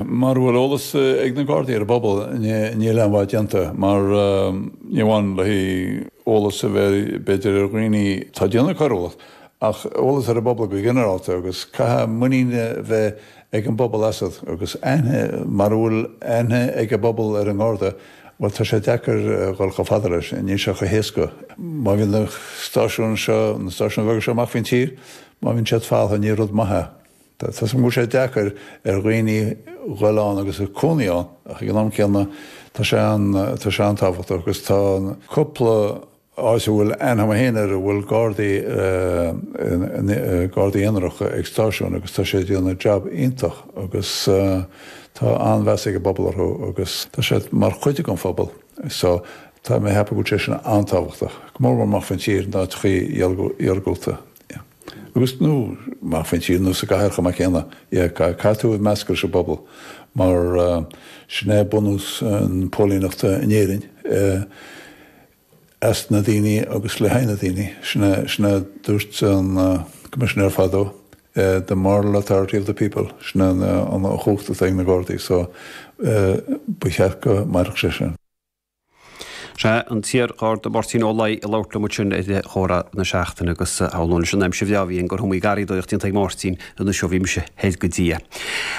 Mara bhfuil eolas ag na Gardaí ar an bpobal, níl aon mhaith déanta mar, ní amháin le haghaidh eolas a bheith b'fhéidir ar dhaoine atá ag déanamh coiriúlacht, ach eolas ar an bpobal go ginearálta agus caithfidh muinín a bheith ag an bpobal asat agus aithne, mara bhfuil aithne ag an bpobal ar an nGarda, bhuel tá sé deacair dhul chomh fada leis, níl sé chomh héasca. Má bhíonn na stáisiúin seo, na stáisiúin bheaga seo amach faoin tír, má bhíonn siad falamh, ní rud maith é. Tá a fhios agam go bhfuil sé deacair ar dhaoine dul ann agus cónaí ann ach ag an am céanna tá sé an-tábhachtach agus tá cúpla áit a bhfuil aithne agam féin air a bhfuil Gardaí, Gardaí aonaracha ag stáisiún agus tá siad ag déanamh jab iontach agus tá an-mheas ag an bpobal orthu agus tá siad mar chuid den phobal. So tá mé ag ceapadh go bhfuil sé sin an-tábhachtach, go mór mór amuigh faoin tír in áiteachaí iargúlta. agus, amuigh faoin tír nó sa gcathair chomh maith céanna, sea, caithfidh tú meascadh leis an bpobal, mar sin é bunús na póilíneachta in Éirinn, as na daoine agus le haghaidh na daoine, sin a dúirt an Coimisinéir fadó, the moral authority of the people, sin an chumhacht atá ag na Gardaí, so ba cheart go mairfeadh sé sin. Is ea, an t-iar-Gharda Máirtín Ó Laoi a labhairt liom ansin ar Chomhrá na Seachtaine agus shamhlóinn leis an aimsir bhreá a bhí againn gur iomaí garraíodóireacht déanta ag Máirtín anois ó bhí mise thoir go dtí é.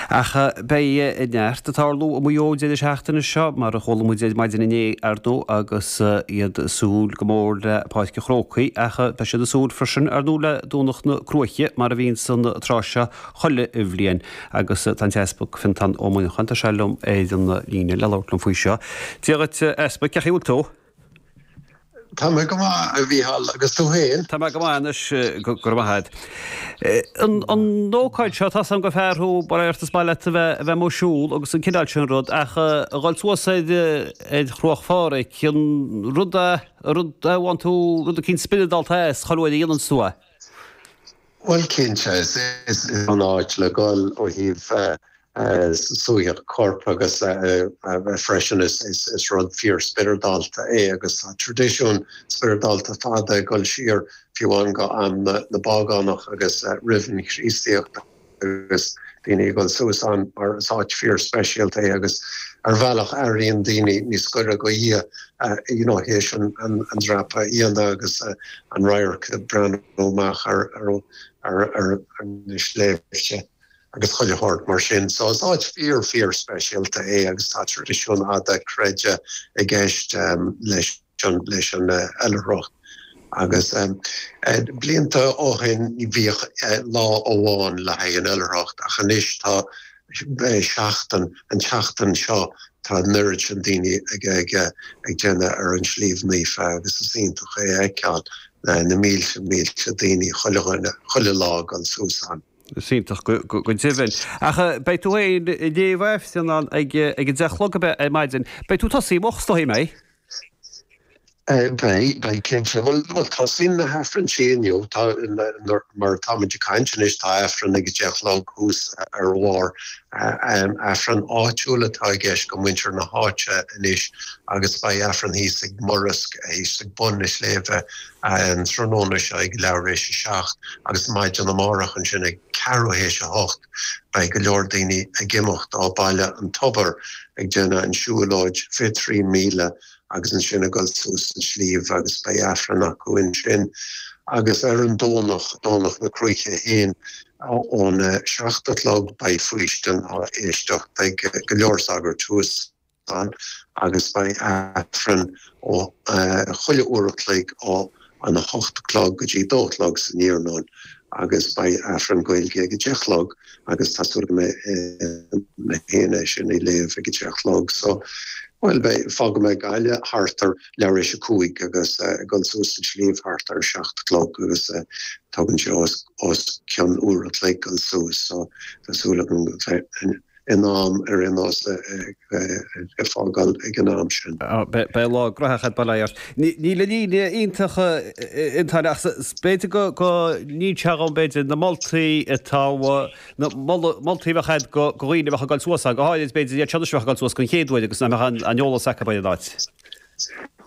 Ach beidh neart ag tarlú i Maigh Eo an deireadh seachtaine seo, mar a chuala muid ar maidin inné, ar ndóigh, agus iad ag súil go mór le Páirc an Chrócaigh ach beidh siad ag súil freisin, ar ndóigh, le Domhnach na Cruaiche, mar a bhíonn an tráth seo chuile bhliain. Agus tá an tEaspag Fintán Ó Muineacháin, tá sé liom ar an líne, le labhairt liom faoi seo. Dia dhuit, a Easpaig, cé chaoi bhfuil tú? Tá mé go maith, a Mhícheál, agus tú fhéin? Tá mé go maith anois, go raibh maith agat. An ócáid seo, tá a fhios agam gur fear thú, mar shampla is maith leat a bheith a bheith ag siúl agus an cineál sin rud, ach a dhul suas ar ar Chruach Phádraig, an rud é a mbaineann tú, rud eicínt spioradálta as, chuile uair a dhéananns tú é? Bhuel, cinnte, is an-áit le dul ó thaobh suaitheadh coirp agus freisin is rud fíor-spioradálta é agus tá traidisiún spioradálta fada ag dul siar fiú amháin go ham na bpágánach agus roimh an Chríostaíocht agus daoine ag dul suas ann mar is áit fíor-speisialta é agus ar bhealach airíonn daoine níos goire do Dhia you know théis an dreapadh a dhéanamh agus an radharc breá amach ar na sléibhte agus chuile shórt mar sin. So is áit fíor, fíor speisialta é agus tá traidisiún fhada creidimh i gceist leis an oilithreacht agus blianta ó shin bhíodh lá amháin le haghaidh an oilithreacht ach anois tá seachtain. An tseachtain seo tá an oiread sin daoine ag déanamh ar an tSliabh Naofa agus is iontach é a fheiceáil, na mílte mílte daoine chuile, chuile lá ag dul suas ann. Is iontach go deimhin. Ach beidh tú féin ag léamh Aifrinn ann ag a deich a chlog ar maidin. Beidh tú tosaithe amach is dóigh, an mbeidh? Beidh, cinnte. Bhuel, tosaíonn na hAifrinn sin inniu. Tá, mar atáimid ag caint anois, tá Aifreann ag a deich a chlog thuas ar a bharr. Aifreann áitiúil atá i gceist go muintir na háite anois agus beidh Aifreann thíos ag Murrisk, thíos ag bun na sléibhe, an tráthnóna seo ag leath tar éis a seacht agus maidin amárach ansin ag ceathrú théis a hocht beidh go leor daoine ag imeacht ó Bhaile an Tobair, ag déanamh an siúlóid fiche trí míle agus ansin ag dul suas an tsliabh agus beidh Aifreann acu ansin agus ar an Domhnach, Domhnach na Cruaiche fhéin ón a seacht a chlog beidh faoistin á éisteacht beidh go leor sagairt thuas ann agus beidh Aifreann ó chuile uair a chloig ó an 8 a chlog go dtí 2 a chlog san iarnóin agus beidh Aifreann Gaeilge ag 10 a chlog agus tá súil agam mé fhéin é sin a léamh ag 10 a chlog so bhuel beidh fágfaidh mé Gaillimh thart ar leath tar éis a cúig agus ag dul suas an sliabh thart ar 7 a chlog agus tógann sé os cionn uair a chloig dul suas so tá súil agam go in am ar aon nós a fágáil ag an am sin. Beidh lá gnóthach agat, bail ó Dhia ort. Níl an líne iontach eadrainn ach b'fhéidir go ndéanfaidh sé dhúinn b'fhéidir na moltaí atá na moltaí a bheadh agat go dhaoine a bheadh ag dul suas ann, go háirid b'fhéidir iad seo anois a bheadh ag dul suas den chéad uair agus nach mbeadh aon eolas acu ar an áit.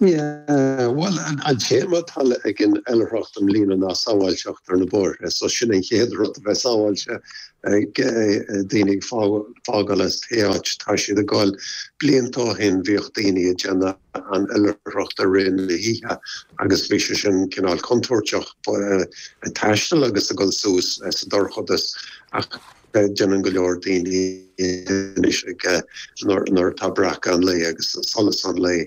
Bhuel, an téama atá ag an Oilithreacht i mbliana ná Sábháilteacht ar na Bóithre, so sin an chéad rud, a bheith sábháilte, daoine ag fágáil as pé áit atá siad ag dul. Blianta ó shin bhíodh daoine ag déanamh an oilithreacht i rith na hoíche agus bhí sé sin cineál contúirteach, ag taisteal agus ag dul suas sa dorchadas ach, Déanann go leor daoine anois ag nuair atá breacadh an lae agus solas an lae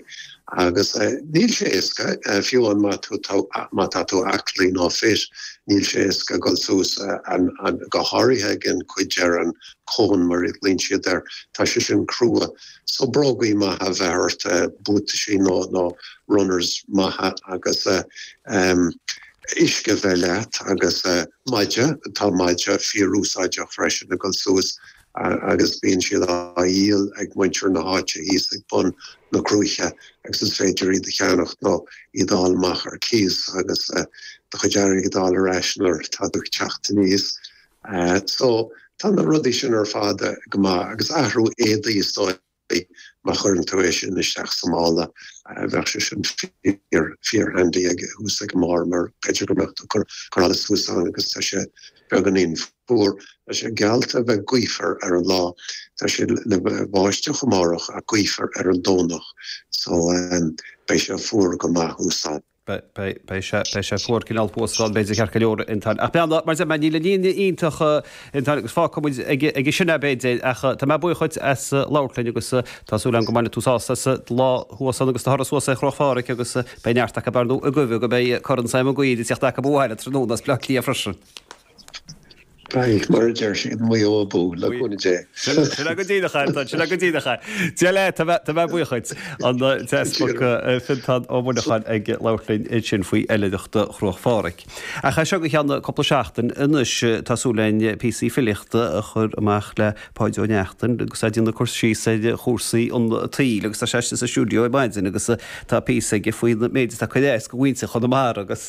agus níl sé éasca fiú an má tá má tá tú aclaí nó fit níl sé éasca dul suas an go háirithe ag an cuid ar an cón mar a ghlaonn siad air. Tá sé sin crua so brógaí maithe a bheith ort, buataisí nó nó runners maithe agus uisce bheith leat agus maide tá maide fíor úsáideach freisin a dhul suas agus bíonn siad á dhíol ag muintir na háite thíos ag bun na cruaiche agus is féidir iad a cheannacht nó iad a fháil amach ar cíos agus do chuid airgid a fháil ar ais nuair atá tú ag teacht aníos so tá na rudaí sin ar fad go maith agus athrú éadaí is dóigh. Beidh. Má chuireann tú é sin isteach sa mála, bheadh sé sin fíor, fíor-handy ag, thuas ag an mbarr mar b'fhéidir go mbeadh tú ag cur allais thuas ann agus tá sé beagáinín fuar. Tá sé geallta a bheith gaofar ar an lá. Tá sé ina bháisteach amárach ach gaofar ar an Domhnach so beidh sé fuar go maith thuas ann. Beidh sé fuar cineál thuas ann, b'fhéidir, ceart go leor a Fhionntáin ach beidh ann, mar is eadh, níl an líne iontach a Fhionntáin agus fágfaidh muid aige sin é, b'fhéidir, ach tá mé buíoch dhuit as labhairt linn agus tá súil agam go mbainfidh tú sásamh as an lá thuas ann agus do thuras suas ar Chruach Phádhraic agus beidh neart acu dar ndóigh ag guí go mbeidh Corn Sam Mhig Uidhir ag teacht acu abhaile tráthnóna as Bleá Cliath freisin. Beidh, mar a deir siad, Maigh Eo abú le cúnamh Dé. Sin é go díreach, a Fhionntáin, sin é go díreach. Dia leat, tá mé, tá mé buíoch duit. An tEaspag Fionntán Ó Monacháin ag labhairt linn ansin faoi oilithreacht Chruach Phádhraic. Ach as seo go ceann cúpla seachtain anois tá súil againn píosaí filíochta a chur amach le Páid Ó Neachtain agus é ag déanamh cur síos ar chúrsaí an tsaoil agus tá sé istigh sa stiúideo ar maidin agus tá píosa aige faoin méid atá ag cur as do mhuintir Chonamara agus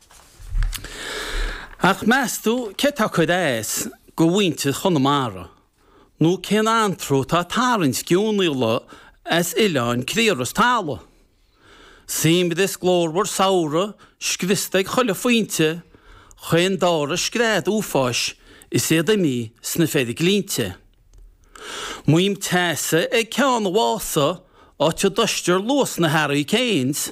Ach meastú céard atá ag cur as do mhuintir Chonamara nó cén anró atá ag tarraingt geonaíola as oileáin criathrach is talamh? Suaimhneas glórmhar samhraidh scriosta ag chuile phointe chaon dara scread uafáis is iad imithe sna feiriglinnte. Maidhm teasa ag Ceann Mhása áit a dtomhaistear luas na hurricanes,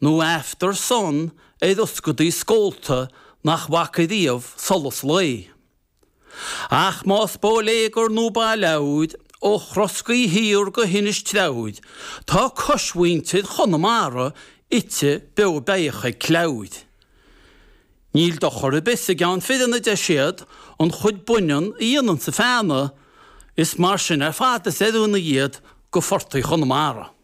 nó after sun ar ioscaidí scólta nach bhfaca riamh solas lae. Ach más bóiléagar nó baileabhair ó Throscaí Thiar go hInis Treabhair, tá coismhuintir Chonamara ite, beo beathach ag cleabhair. Níl dochar ar bith sa gceann fireann a deir siad an chuid baineann a dhéananns an feannadh, is mar sin ar fad is oiriúnaí iad do phortaigh Chonamara.